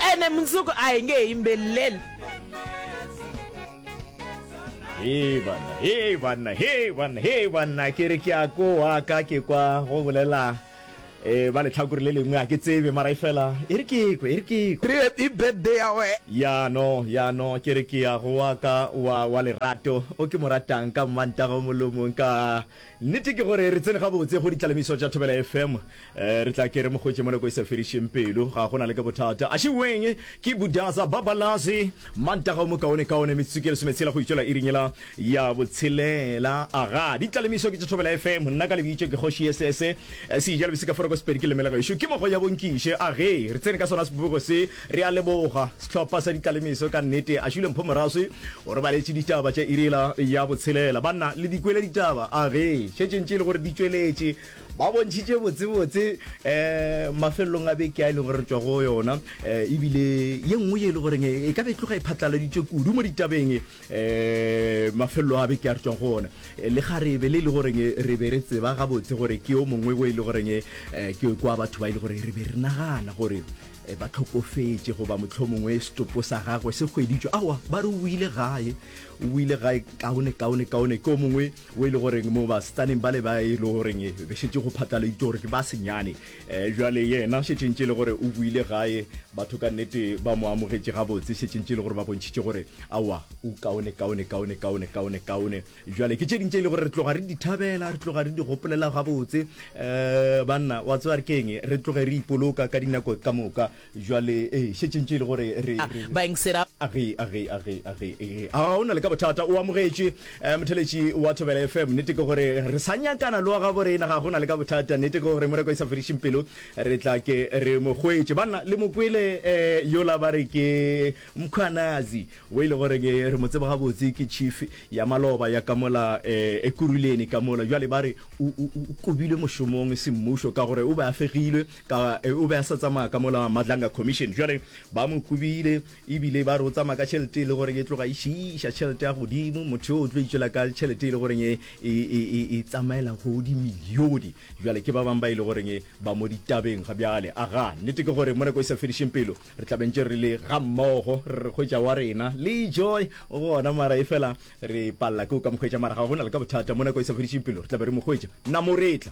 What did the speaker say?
ene mundzuku a hi nge hi yimbeleli Hei banna, hei banna, hei banna, hei banna, ke re ke a koa ka ke kwa go bolela eh ba letlhakore le lengwe a ke tsebe mara e fela e re ke kwe e re ke kwe re happy birthday ya we ya no ya no ke re ke ya go wa ka wa wa lerato o ke mo ratang ka mmantago molomong ka Nnete ke gore re tsene gabotse go ditlalemiso tša Thobela FM. Re tla ke re mo hwetše mo nako e sa fedišeng pelo. Ga go na le ke bothata. Axiweng ke Budaza Babalazi. Mantaga o mokaonekaone metsotso ke lesometshela go itšwela iring yela ya botshelela. Aga, ditlalemiso ke tša Thobela FM. Nna ka lebitšo ke Kgoši Yesese. Sejalobesekaforoko Sepedi ke leme la gešo. Ke mogo ya bo Nkiše. Age, re tsene ka sona sebopego se. Re a leboga sehlopha sa ditalemiso ka nnete. Ashule Mpho Moraswi o re baletše ditaba tša irila ya botshelela. Banna le di kwele ditaba a re šetšeng tše e le gore di tšweletše. Ba bontšhitše botsebotse um mafelelong a beke a e leng gore re tšwa go yona um ebile ye nngwe ye e le goreng e ka be e tloga e phatlaladitšwe kudu mo ditabeng um mafelelo a beke a re tšwang go ona le ga re be le e le goreng re be re tseba gabotse gore ke yo mongwe o e le goreng um ke kwa batho ba e le gore re be re nagana gore E ba hlokofetše goba mohlomongwe setopo sa gagwe se hweditšwe. Awa, ba re o ile gae, o ile gae kaone, kaone, kaone. Ke o mongwe o e le goreng mo basetsaneng bale ba e le goreng be šetše go phatlaladitšwe gore ke ba senyane. E, bjale yena šetše ntše e le gore o boile gae, batho ka nnete ba mo amogetše gabotse, šetše ntše e le gore ba bontšhitše gore awa, o kaone, kaone, kaone, kaone, kaone, kaone. Bjale ke tše ding tše e le gore re tloga re di thabela, re tloga re di gopolela gabotse. Um banna, wa tseba re keng, re tloge re ipoloka ka dinako ka moka. Bjale ee, šetšeng tše e le gore re, re, Bang se ra. Age, age, age, age, age. A o na le ka bothata, o amogetše, um motheletši wa Thobela FM. Nnete ke gore re sa nyakana le wa gabo rena, ga go na le ka bothata. Nnete ke gore mo re kwa e sa fedišeng pelo, re tla ke re mo hwetše. Banna, le mo kwele, um yola ba re ke. Mkhwanazi, wo e le goreng re mo tseba gabotse ke chief ya maloba ya ka mola Ekurhuleni ka mola, bjale ba re o kobilwe mošomong semmušo ka gore o be a fegilwe ka o be a sa tsamaya ka mola Madlanga Commission. Bjale ba mo kobile e bile ba re o tsamaya ka tšhelete e le goreng e tloga e šiiša tšhelete ya godimo. Motho yo o tlo itšwela ka tšhelete e le goreng e tsamaela go dimilione. Bjale ke ba bang ba e le goreng ba mo ditabeng ga bjale. Aga, nnete ke gore mo nako e sa fedišeng pelo Re tla bentše re le ga mmogo, re re hwetša wa rena le Joy o gona, mara e fela re palela ke go ka mohwetša, mara ga go na le ka bothata, mo nako e sa fedišeng pelo re tla be re mohwetša. Namoretla.